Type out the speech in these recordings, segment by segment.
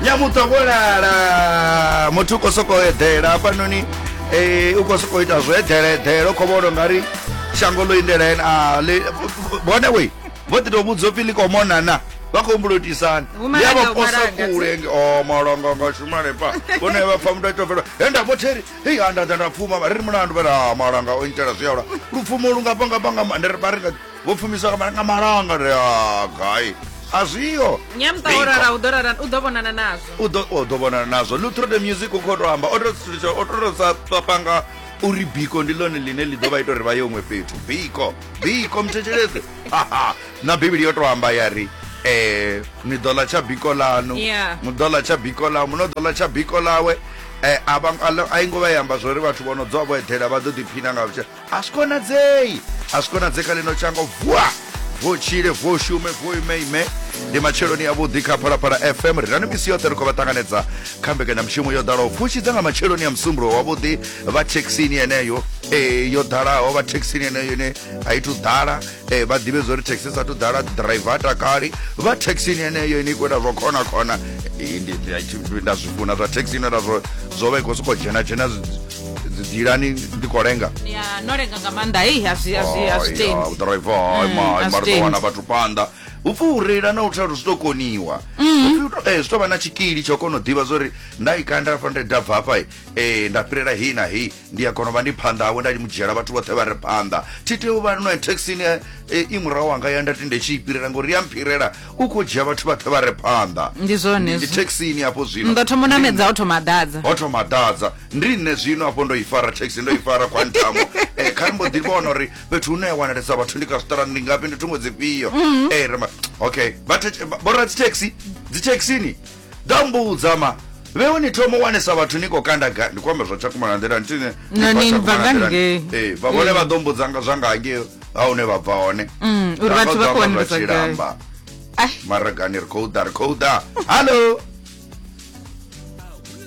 nyamuṱwa vho lala muthu u khou sokou eḓela hafhanoni um u khou sokou ita zwo eḓela eḓela u khou vhona nga ri shango ḽo indela ene a vhone we vho ḓi tou vhudzwa upfi ḽi khou monana vha khou humbula u itisani ndi a vha posa kule o oh, malonga nga shumale pa vhone vha pfa muthu a tou fela he nda vhotheri hei a nda ḓa nda pfuma vha ri ri mulandu vha ri a ah, malanga o intela zwi aula lupfumo lu nga pangapanga vha ri nga vho pfumisa nga nga malanga ri ah, gai a zwiyo nyamta o rara u ḓo rara u ḓo vhonana nazwo u ḓo u ḓo vhonana nazwo lu through the music u khou tou amba o tou sitshwa o tou sa sa panga uri biko ndi ḽone ḽine ḽi ḓo vha ita uri vha ye huṅwe fhethu biko biko muthetshelese haha na bivhili yo tou amba ya ri eh ni ḓo ḽa tsha biko ḽanu Yeah. mu ḓo ḽa tsha biko ḽawe muno ḓo ḽa tsha biko ḽawe eh a vha- a lo- a i ngo vha ya amba zwo ri vhathu vho no dzwa vho eḓela vha ḓo ḓiphina nga vhutshilo a zwi konadzei a zwi konadzei kha lino tshango vuwa vuo tshile vuo shume vuo ime ime ndi matsheloni avhuḓi kha phalaphala fm ri rani misi yoṱhe ri khou vha ṱanganedza kha mbekanyamushumo yo ḓalaho pfushi dza nga matsheloni a musumbulo wavhuḓi vha thekhisini yeneyo eh, yo ḓalaho vha thekhisini yeneyo ine a i thu ḓala eh, vha ḓivhe zwa uri thekhisi sa thu ḓala driver a takali vha thekhisini yeneyo ine i khou ita zwa khona khona Eh, ndi- ndi- ndi- nda zwi funa zwa thekhisini nda zwo zwo vha i khou sokou dzhena dzhena dzilani ndi kolenga ya nolenga nga maanḓa hei azwi azwi azwitendi udriver Mm, ima ima azwitendi. ritowana vhathu phanḓa upfi u reila na u thelu zwi ḓo koniwa upfi u to- eh, zwi tou vha na tshikili tsha u kona u ḓivha zwa uri nda i kanda hafha nda i dabva hafha eh, nda fhirela hei na hei ndi a kona u vha ndi phanḓa hawe nda mu dzhiela vhathu vhoṱhe vha re phanḓa thi tea u vha no taxini eh, i murahu wanga ya nda tende tshi i fhirela ngori ya mphirela u khou dzhia vhathu vhathe vha re phanḓa ndi zwone ndi thekisini hafho zwino ndo thoma namedza ho thoma ḓadza ho thoma ḓadza ndi nṋe zwino hafho ndo i fara thekisi ndo i fara kwantamo eh, kha mbo ḓi vhona uri fhethu hune ya wanalesa vhathu ndi kha zwiṱarani ndi ngafhi ndi thungo dzifhio mm. eh, rema okay vhoradzitheksi dzithekisini ḓa mbudza ma vheo ni thoma u wanesa vhathu ni khou kanda ga ndi khou amba zwa tshakumana nḓila ntini Na ni bva nga ngei. ee vha vhone vha ḓo mbudza nga zwa nga hangei ha hune vha bva hone Mm, uri vhathu vha khou wanelesa gai. tshilamba Ai. maragani ri khou ḓa ri khou ḓa hallo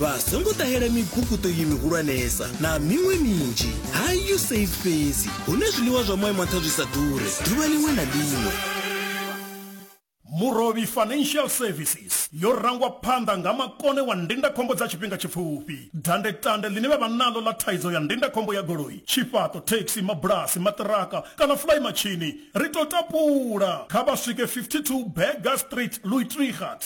vha songo ṱahela mibukuṱo iyi mihulwanesa na miṅwe minzhi ha you save fhedzi hune zwiḽiwa zwa moya mantha zwi sa ḓure ḓuvha ḽiṅwe na ḽiṅwe Murovhi Financial Services yo rangwa phanḓa nga makone wa ndindakhombo dza tshifhinga tshipfufhi. Dandetande ḽine vha vha naḽo ḽa thaidzo ya ndindakhombo ya goloi, tshifhaṱo, thekhisi, mabulasi, maṱiraka kana fulayimatshini, ri tou tapula kha vha swike 52 Burger Street, Luitregat.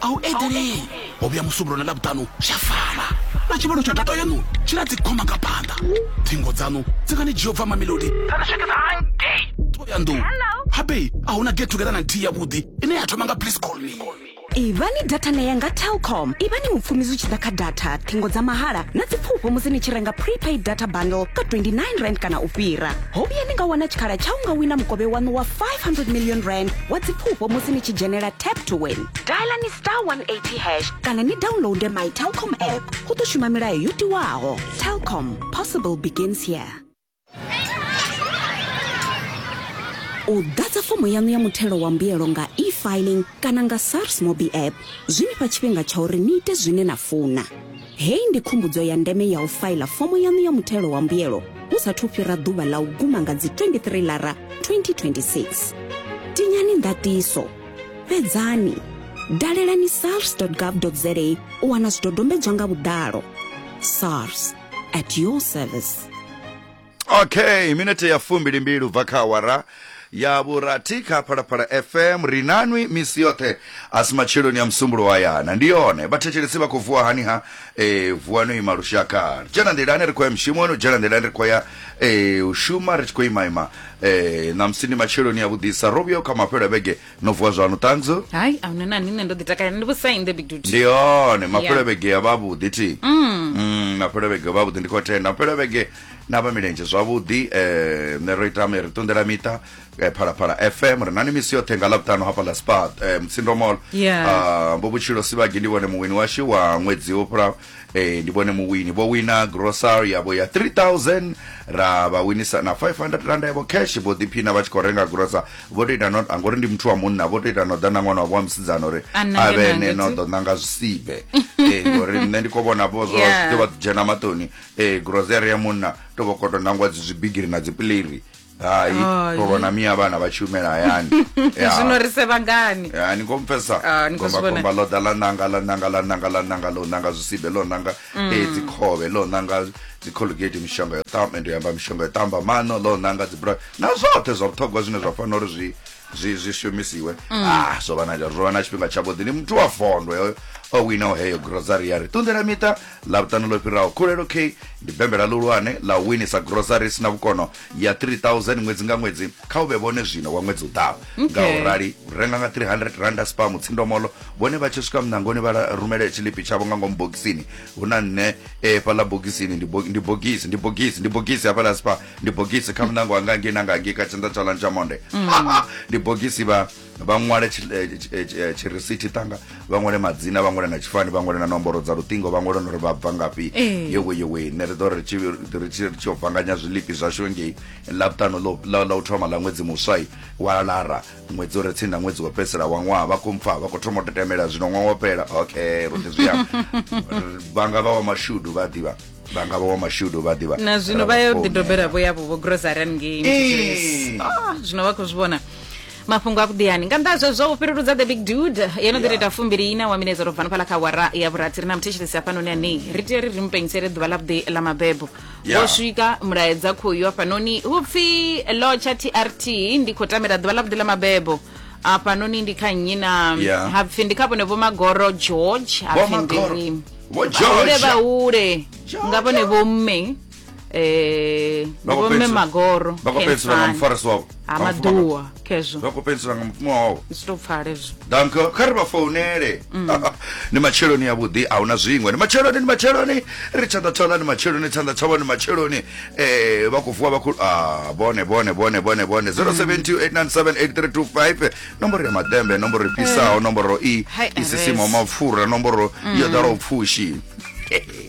a hu eḓelei ho vhuya musumbulo na ḽavhuṱanu zwa fana na tshivhalo tsha data yaṋu tshi na dzikhoma nga phanḓa thingo dzaṋu dzi nga ni dzhia u bva mamelodi thoyandou habei a huna get together na nthihi yavhuḓi ine ya thoma nga please call me ivhani data na ya nga telcom ivhani mupfumi zwi tshi ḓa kha data thingo dza mahala na dzipfufho musi ni tshi renga prepaid data bundle ka 29 rand kana u fhira ho vhuya ni nga wana tshikhala tsha u nga wina mukovhe waṋu wa 500 million rand wa dzipfufho musi ni tshi dzhenela tap to win dialani star 180 hash kana ni downloade my telcom app hu ḓo shuma milayo yo tiwaho telcom possible begins here u ḓadza fomo yaṋu ya muthelo wa mbuyelo nga e-filing kana nga sars mobi app zwi ni fha tshifhinga tsha uri ni ite zwine na funa Hei ndi khumbudzo ya ndeme ya u faila fomo yaṋu ya muthelo wa mbuyelo hu sa thu fhira ḓuvha ḽa u guma nga dzi 23 lara 2026. Tinyani ndatiso, fhedzani, dalelani sars.gov.za u wana zwidodombedzwa nga vhuḓalo. SARS, at your service. okay minete ya fumbili mbili ubva kha awara ya vhurathi kha phalaphala fm ri nanwi misi yoṱhe a si matsheloni ya musumbulo wa yana ndi yone vhathetshelesi vha khou vuwa hani ha e, vuwa no ima lushaka dzhena nḓilani ri khou ya mushumoni dzhena nḓilani ri khou ya e, u shuma ri tshi khou imaima e, ṋamusi ndi matsheloni ya vhuḓisa ro vhuyaho kha mafhelo a vhege no vuwa zwanu ṱhanzi zo hayi ahuna nani nṋe ndo ḓi takalela ndi vhusa in the big duty ndi hone mafhelevhege ya vhavhuḓi thi mm. mm, mafhelevhege ya vhavhuḓi ndi khou tenda mafhelevhege na vha milenzhe zwavhuḓi um ṋe ro ita ri ṱunḓela miṱa eh, phalaphala fm ri nani misi yoṱhe nga ḽavhuṱanu hafha ḽa spat um eh, mtsindo mall ah, mbo vhutshilo sivhagi ndi vhone muwini washu wa ṅwedzi wo fhulaho Ee, ndi vhone muwini vho wina grocery yavho ya 3000 ra vha winisa na 500 randa yavho cash vho ḓiphina vha tshi khou renga grocer vho to ita no ngori ndi muthu wa munna vho to ita no ḓa na ṅwana wavho wa musidzana uri A nange a vhe nange ene no tu. ḓo nanga zwisibe ee ngori nṋe ndi khou vhona vho zwo Yeah. zwi ḓo vha dzhena maṱoni ee grocery ya munna to vho koto nangwa dzi zwibigiri na dzipileri hai Hai. tovha na miya vhana vha tshi humela hayani Ya. zwino ri sevha ngani Ya, ni khou mpfesa Ah, ni khou zwi vhona. gombakomba ḽo ḓa ḽa nanga ḽa nanga ḽa nanga ḽa nanga ḽo nanga zwisibe ḽo nanga Mm. eh, dzikhovhe ḽo nanga dzicolgate mishonga yo tamba ndi amba mishonga yo tamba mano ḽo nanga dzibra na zwoṱhe zwa vhuṱhogwa zwine zwa fanela uri zwi zwi zwi shumisiwe Mm. ah zwo vha na zwo vha na tshifhinga tshavhuḓi ndi muthu wa fondo yo o winaho heyo grocery ya ri ṱunḓela miṱa Ḽavhuṱanu ḽo fhiraho, Khulelo K ndi bembela ḽihulwane ḽa u winisa groceries na vhukono ya 3000 ṅwedzi nga ṅwedzi kha u vhe vhone zwino wa ṅwedzi u ḓaho. Nga u rali, renga nga R300 a Spar Mutsindomolo, vhone vha tshi swika muṋangoni vha rumele tshiḽipi tshavho nga ngomu bogisini. Hu na nṋe e fhaḽa bogisini, ndi bo, ndi bogisi, ndi bogisi, ndi bogisi hafhaḽa Spar, ndi bogisi kha muṋango wa nga ngei na nga ngei kha tshanḓa tshaḽani tsha monde. Ha ha, ndi bogisi vha. vha ṅwale tshirisithi tanga vha ṅwale madzina vha ṅwale na tshifani vha ṅwale na nomboro dza luṱingo vha ṅwale nori vha bva ngafhi yewe yewe ne ri ḓo ri tshi vanganya zwilipi zwashu ngei ḽavhutano ḽa u thoma ḽa ṅwedzi muswai wa lara ṅwedzi uri tsini na ṅwedzi wa fhedzisela wa ṅwaha vha khou mpfa vha khou thoma u tetemela zwino ṅwaha wa fhela okay ro ḓi zwi amba vhanga vha wa mashudu vha ḓivha vhanga vha wa mashudu vha ḓivha na zwino vha yo ḓidobela vho yavho vho grosarian ngei ah, zwino vha khou zwi vhona mafhungo a vhuḓiyani nga nnḓa zwezwo u fhiruludza the big dude yo no ḓi tou ita fumbili ina wa minetsa ro bva nofhala kha wara ya vhurathi ri na muthetshelesi hafhanoni anei ri tea ri ri mu pengisele ḓuvha ḽa vhuḓi ḽa mabebo Ya. wo swika mulaedza khoyu hafhanoni hu pfi lotsha trt ndi khou tamela ḓuvha ḽa vhuḓi ḽa mabebo hafhanoni ndi kha nnyi na Ya. ha pfi ndi kha vhone vho magoro george ha Vho pfi Magoro. ndi Vho George. vhahule vhahule nga vhone vho mme eh ngomme magoro bakopedzisira nga mufarisi wavo amaduwa kezvo bakopedzisira nga mupfuma wavo zitopfale zvo dank kha ri vha founele mm. ni matsheloni yavhuḓi a huna zwiṅwe ni matsheloni ni matsheloni ri tshanḓa tshanḓa ni matsheloni tshanḓa tshavho ni matsheloni um vha khou vuwa vha khou a ah, bone bone bone bone bone 0728978325 nomboro ya maḓembe nomboro i fhisaho eh. nomboro i isisimo mapfura nomboro yo mm. ḓalaho pfushi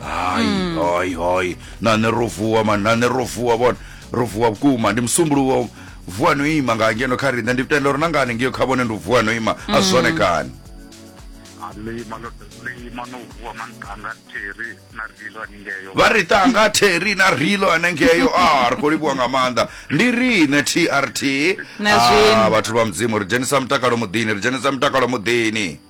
hayi hayi hayi nane ro vuwa mani nane ro vuwa bona ro vuwa vhukuma ndi musumbulowo vuwa no ima nga ngeno kha riṋe ndi tenda uri na ngani ngiyo kha vhone ndi u vuwa no ima a zwone kani alima lo lima no vuwa mankanga theri na rilo aningeyo vha ri tanga theri na rilo anengeyo a ri khou livhuwa nga maanḓa ndi riṋe trt Na zwino. Ah, vhathu vha mudzimu ri dzhenisa mutakalo muḓini ri dzhenisa mutakalo muḓini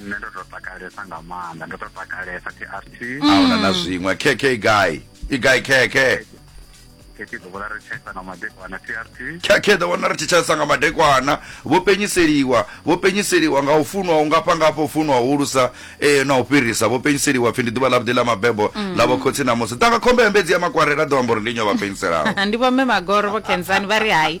nṋe ndo to takalesa nga maanḓa ndo to takalesa trt ahuna na zwiṅwe kk guy i guy kk kk ḓo vhona ri tshesa nga madekwana trt kk ḓo vhona ri tshisa nga madekwana vho penyiseliwa vho penyiseliwa nga u funwa u ngafha ngafha u funwa u hulusa eh, na u fhirisa vho penyiseliwa pfi ndi ḓuvha ḽa vhuḓi ḽa mabebo mm. ḽa vhokhosi na musi ḓanga khombe ya mbedzi ya makwarela ḓo amba uri ndi nyo vha penyiselaho ndi vhomme magoro vho kenzani vha ri hai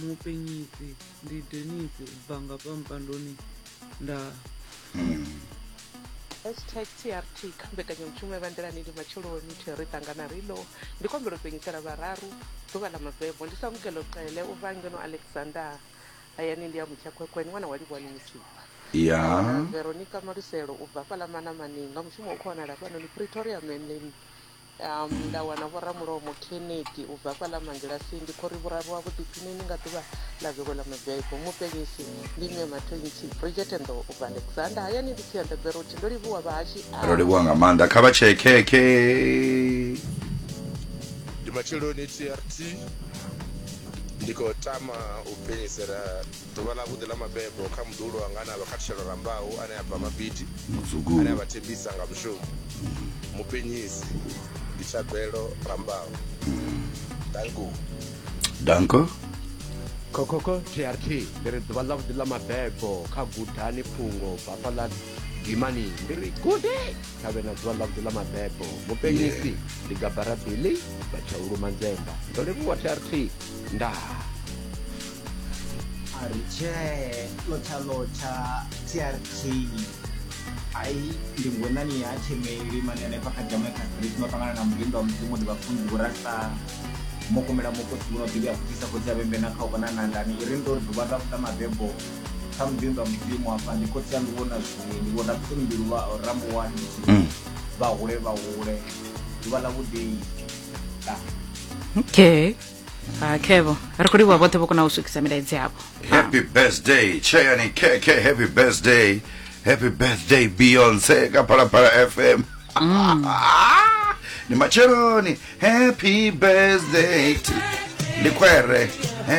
Mupenyisi ndi Dennis u bva nga fha mpandoni nda. Hashtag TRT kha mbekanyamushumo ya Vha Nḓilani ndi matsheloni thwi ri ṱangana ri lo. Ndi khou humbela u penyisela vhararu ḓuvha ḽa mabebo. Ndi Samukelo Cele u bva ngeno Alexander hayani ndi a Mutshakhwekhwe ndi ṅwana wa Livhuwani Musipha. Nda wana Veronica Maluselo u bva hafhaḽa Manamani nga mushumo u khou wanala hafhanoni Pretoria Manly Um, nda wana vhoramulomo Kennedy u bva fha ḽa Mangilasini. Ndi khori vhuraru ha vhuḓiphinini nga ḓuvha ḽa vhego ḽa mabebo. Muphenyisi ndi Mme Mathontsi, Bridget and Ndo u bva Alexander. Hayani ndi Tsianda Berothi. Ndo livhuwa vhahashi a. Ro livhuwa nga maanḓa kha vha tshee khekhe. Ndi matsheloni TRT ndi khou tama u phenyisela Ḓuvha ḽavhuḓi ḽa mabebo kha muḓuhulu wanga ane a vha khathutshelo rambau ane a bva Mabidi, ane a vha thembisa nga mushumo, mupenyisi ndi Thabelo Rambau. Danko. Danko. Khokhokho TRT ndi ri ḓuvha ḽavhuḓi ḽa mabebo kha Gudani Phungo bafha ḽa Dimani ndi ri gude kha vhe na ḓuvha ḽavhuḓi ḽa mabebo. Mupenyisi ndi Gabara Billy Batshaulu Manzemba. Ndo livhuwa TRT. Ndaa. Aricee lotsha lotsha TRT ai ndi ngonani ya themeli mani hanefha kha jamai kha street no ṱangana na mulinda wa mudzimu ndi vhafunzi vhorasa mokomela mukosi vhuno ḓivhi a khuthisa khotsi a vhembe na kha u vhona nandani i ri ndo ri ḓuvha ḽa vhuḓa mabebo kha mulinda wa mudzimu hafha ndi khotsi a ndi vhona zwiwi ndi vho rapsoni mbilu vha rambuwani ndi tshi Mm. vha hule vha hule ḓuvha ḽa vhuḓei okay Ah, khevo ri khou livhuwa vhoṱhe vho kona u swikisa milaedzi yavho happy birthday cheyani kk happy birthday happy birthday beyonce ka phalaphala fm ni matsheloni happy birthday to- ndi khwere Eh,